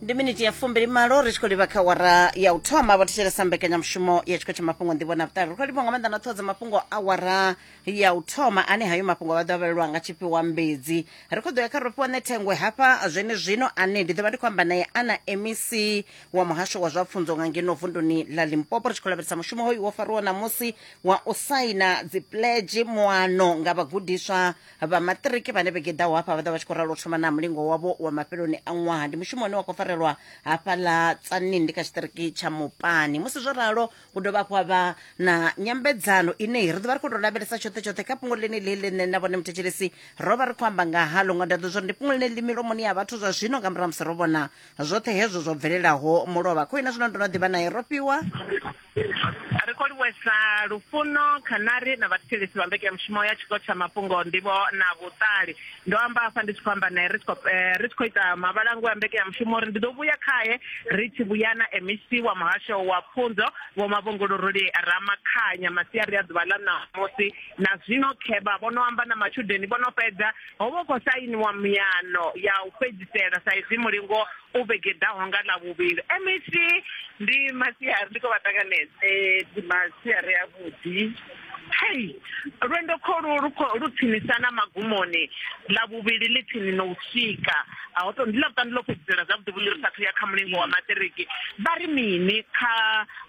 ndi miniti ya fumbili malo ri tshi khou livha kha wara ya u thoma vho thetshelesa mbekanyamushumo ya tshikho tsha mafhungo nḓivho na vhuṱali ri khou livha nga maanḓa na ṱhodza mafhungo a wara ya u thoma ane hayo mafhungo vha ḓo avhelelwa nga tshifhiwa mbedzi ri khou ḓo ya kha rofhiwa nṋe thengwe hafha zwene zwino ane ndi ḓo vha ndi khou amba naye ana mec wa muhasho wa zwa pfunzo nga ngeno vunduni ḽa limpopo ri tshi khou lavhelesa mushumo hoyu wo fariwaho ṋamusi wa u saina dzipledge muano nga vhagudiswa vha maṱiriki vhane vhege ḓaho hafha vha ḓa vha tshi khou ralo thoma na mulingo wavho wa mafheloni a ṅwaha ndi mushumo une wa khou farelwa hafha ḽa tsanindi kha tshiṱiriki tsha mupani musi zwo ralo hu dovha hafhu ha vha na nyambedzano ine ri ḓovha ri khou tou lavhelesa tshoṱhe tshoṱhe kha fhungo ḽene ḽi ḽine na vhone muthetshelesi ro vha ri khou amba nga halo nga ndaḓo zwori ndi fhungo ḽine ḽi milomoni ya vhathu zwa zwino nga murahu musi ro vhona zwoṱhe hezwo zwo bvelelaho mulovha kho ina zwino ndo no ḓivha naye ro fhiwa Ri khou livhuwesa lufuno, khanari na vhathetshelesi vha mbekanyamushumo ya Tshiko tsha Mafhungo, Nḓivho na Vhuṱali. Ndo amba hafha ndi tshi khou amba nae ri tshi khou eh, ri tshi khou ita mavhalango a mbekanyamushumo uri ndi ḓo vhuya khae ri tshi vhuya na MEC wa Muhasho wa Pfunzo Vho Mavhunguluruli Ramakhanya masiari a ḓuvha ḽa ṋamusi na zwino khevha vho no amba na matshudeni vho no fhedza ho vha khou sainiwa miyano ya u fhedzisela sa izwi mulingo u vhegedaho nga ḽa vhuvhili mec ndi masiari ndi khou vha ṱanganedza eh, ndi masiari a vhuḓi hei lwendo kholu lu tsinisa na magumoni ḽa vhuvhili ḽi tsini no u swika ho to ndi ḽa vhuṱanu ḽo fhedzisela zwavhuḓi vhuḓi ri sathu ya kha mulingo wa maṱiriki vha ri mini kha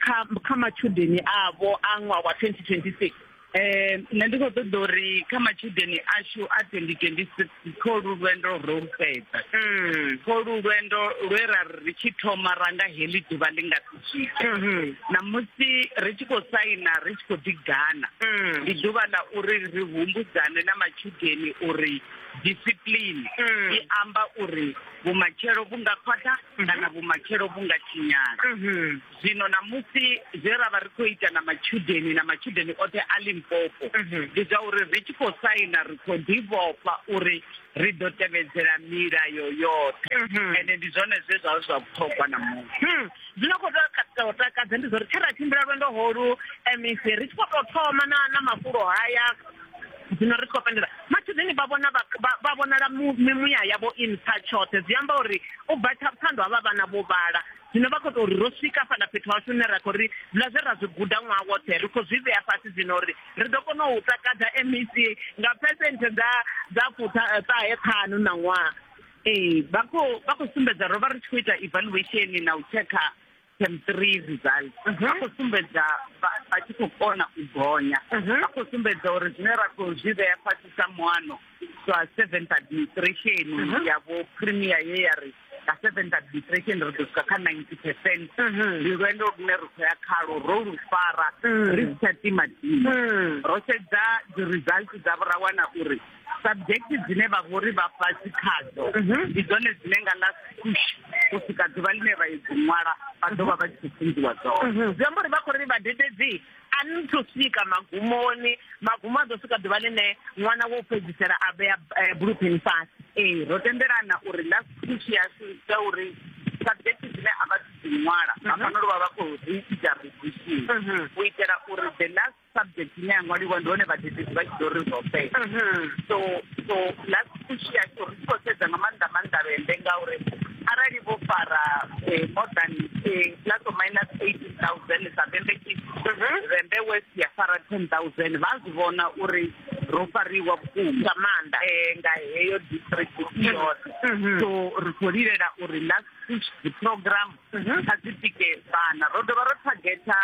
kha kha matshudeni avho a ṅwaha wa 2026 Eh, nṋe ndi khou ṱoḓa uri kha matshudeni ashu a 2026 kho lu lwendo ro lu fhedza mm. kho lu lwendo lwe ra ri tshi thoma ra nga heḽi ḓuvha ḽi nga si swike mm-hmm. namusi ri tshi khou saina ri tshi khou ḓigana mm. ndi ḓuvha ḽa uri ri humbudzane na matshudeni uri discipline mm. i amba uri vhumatshelo vhu nga khwaṱha mm-hmm. kana vhumatshelo vhu nga tshinyala mm-hmm. zwino ṋamusi zwe ra vha ri khou ita na matshudeni na matshudeni oṱhe a limpopo mhm. ndi zwa uri ri tshi khou saina ri khou ḓivhofha uri ri ḓo tevhedzela milayo yoṱhe mhm. ende ndi zwone zwe zwa zwa vhuṱhogwa na muṅwe hmm. zwino khou tou takadza ndi zwa uri tshe ra tshimbila lwendo holu mec ri tshi khou tou thoma na na mafulo haya zwino ri khou fendela matshudeni vha vhona vha vhonala mimuya yavho i nṱha tshoṱhe zwi amba uri u bva tsha vhuṱhando havha vhana vho vhala zwino vha khou tou ri ro swika fhaḽa fhethu hashu hune ra khou ri zwiḽa zwe ra zwi guda ṅwaha woṱhe ri khou zwi vhea fhasi zwino uri ri ḓo kona u takadza mec nga phesenthe dza dza fuṱahe eh, ṱhanu na ṅwaha ee vha khou vha khou sumbedza ro vha ri tshi khou ita evaluation na u tshekha tem three result mhm. vha khou sumbedza vha tshi khou kona u gonya mhm. vha khou sumbedza uri zwine ra khou zwi vhea fhasi sa muano zwa seventh administration mhm. ya vho premier ye ya ri nga seven ka depression ri ḓo swika kha ninety percent mhm. ndi lwendo lune ri khou ya khalo ro lu fara mhm. ri si tsha tima tima mhm. ro sedza dzi-result dza vho ra wana uri subject dzine vha vhori vha fhasi khadzo ndi dzone dzine nga la push u swika ḓuvha ḽine vha yo dzi ṅwala vha ḓo vha vha tshi khou funziwa dzone zwi amba uri vha khou ri vhadededzi a ni thu swika magumoni magumo a ḓo swika ḓuvha ḽine ṅwana wo fhedzisela a vhea eh, bluepen fhasi ee ro tendelana uri last speech ya ya uri subject dzine a vha dzi ṅwala mhm. hafhano luvha vha khou ri ita revision mhm. u itela uri the last subject ine ya ṅwaliwa ndi hone vhadededzi vha tshi ḓo ri zwo fhela mhm. so so last pfushi ya tsho ri tshi khou sedza nga maanḓa maanḓa vhende ngauri arali vho fara eh, more than eh, plus or minus eighteen thousand sa vhembe ki mhm. vhembe west ya fara ten thousand vha zwi vhona uri ro fariwa vhukuma nga maanḓa um nga heyo district mhm. yoṱhe mhm. so ri khou lilela uri last push the program kha dzi tike vhana ro dovha ro thagetha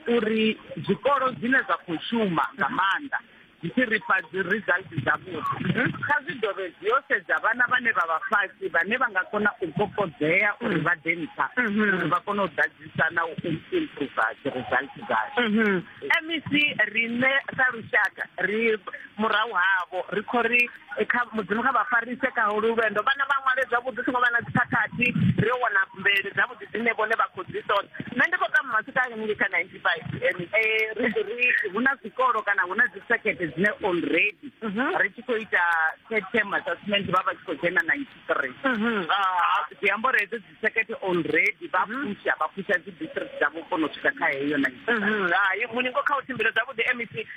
uri zwikolo zwine zwa khou shuma nga maanḓa dzi tshi ri fha dzi result dzavhuḓi mhm. kha zwi dovhe zwi yo sedza vhana vhane vha vha fhasi vhane vha nga kona u kokodzea uri vha ḓe nṱha mhm. uri vha kone u ḓadzisa na u improva dzi result dzashu mhm. mec riṋe sa lushaka ri murahu havho ri kho ri eh, kha mudzimu kha vha farise kha holu lwendo vhana vha ṅwale zwavhuḓi songo vha na dzikhakhathi ri yo wana mvelele dzavhuḓi dzine vhone vha khou dzi ṱoḓa nṋe ndi khou tama masika a ngei kha Eh, ri ri hu na zwikolo kana hu na dzi circuit dzine already mhm. ri tshi khou ita third term assessment vha vha tshi khou dzhena ninety three mhm. ah, zwi amba uri hedzo dzi circuit already vha mhm. pusha vha pusha dzi district dzavho kona u swika kha heyo ninety three hai muningo kha u tshimbila zwavhuḓi mec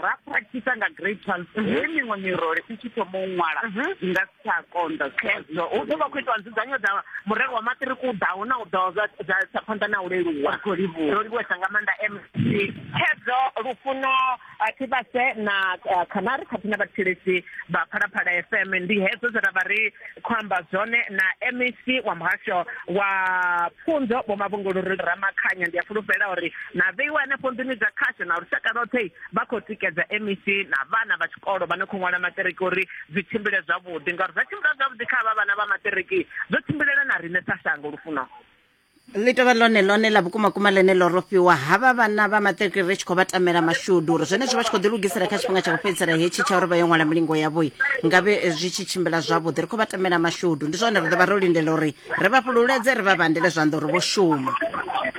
ra practice nga grade twelve mhm. he miṅwe mirole i tshi thoma u ṅwala i mhm. nga si tsha konḓa khezwo u ḓo vha khou itiwa nzudzanyo dza murero wa maṱiriki u ḓaho na u ḓaho dza phanḓa na u leluwa ro livhuwesa nga maanḓa mc khezwo lufuno thivhase na khanari khathihi na vhathetshelesi vha phalaphala fm ndi hedzo zwe ra vha ri khou amba zwone na mec wa muhasho wa pfunzo vho mavhunguluri ramakhanya ndi a fulufhela uri na vheiwa hanefho nḓuni dza khasho na lushaka lwoṱhe vha khou tikedza mec na vhana vha tshikolo vha no khou ṅwala maṱiriki uri zwi tshimbile zwavhuḓi ngauri zwa tshimbila zwavhuḓi kha vha vhana vha maṱiriki zwo tshimbilela na riṋe sa shango lufuno ḽi tovha ḽone ḽone ḽa vhukumakuma ḽene ḽo rofhiwa havha vhana vha maṱiriki ri tshi khou vha tamela mashudu uri zwenezwo vha tshi khou ḓi lugisela kha tshifhinga tsha u fhedzisela hetshi tsha uri vha yo ṅwala milingo yavhoi ngavhe zwi tshi tshimbila zwavhuḓi ri khou vha tamela mashudu ndi zwone ri ḓo vha ro lindela uri ri vha fhululeze ri vha vhandele zwanḓa uri vho shuma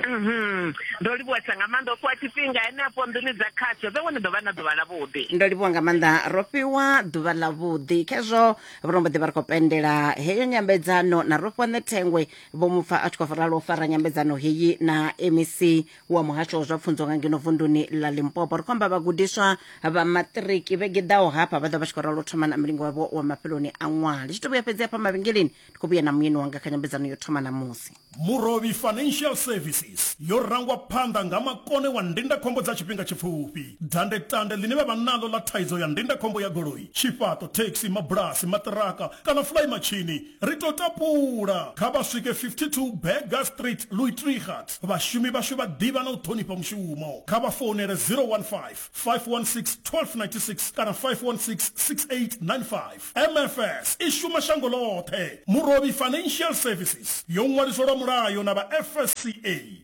mhm. ndo livhuwesa nga maanḓa ofhiwa tshifhinga henefho nḓuni dza khasho vhe wone ḓo vha na ḓuvha ḽavhuḓi ndo livhuwa nga maanḓa ro fhiwa ḓuvha ḽavhuḓi khezwo vhulombo ḓi vha ri khou pendela heyo nyambedzano na ro fhiwa ṋethengwe vho mu pfa a tshi khou ralo fara nyambedzano heyi na mec wa muhasho wa zwa pfunzo nga ngeno vunduni ḽa limpopo ri khou amba vhagudiswa vha maṱiriki vhege ḓaho hafha vha ḓo vha tshi khou ralo thoma na mulingo wavho wa mafheloni a ṅwaha ndi tshi to vhuya fhedzi hafha mavhengeleni ndi khou vhuya na muyeni wanga kha nyambedzano yo thoma ṋamusi Murovhi Financial Services yo rangwa phanḓa nga makone wa ndindakhombo dza tshifhinga tshipfufhi, dandetande ḽine vha vha naḽo ḽa thaidzo ya ndindakhombo ya goloi, tshifhaṱo, thekhisi, mabulasi, maṱiraka kana fulaimatshini. Ri tou tapula, kha vha swike 52 Burger Street, Luitregat. Vhashumi vhashu vha ḓivha na u ṱhonifha mushumo. Kha vha founele 015 516 1296 kana 516 6895. MFS i shuma shango ḽoṱhe. Murovhi Financial Services yo ṅwaliswa lwa mulayo na vha FSCA.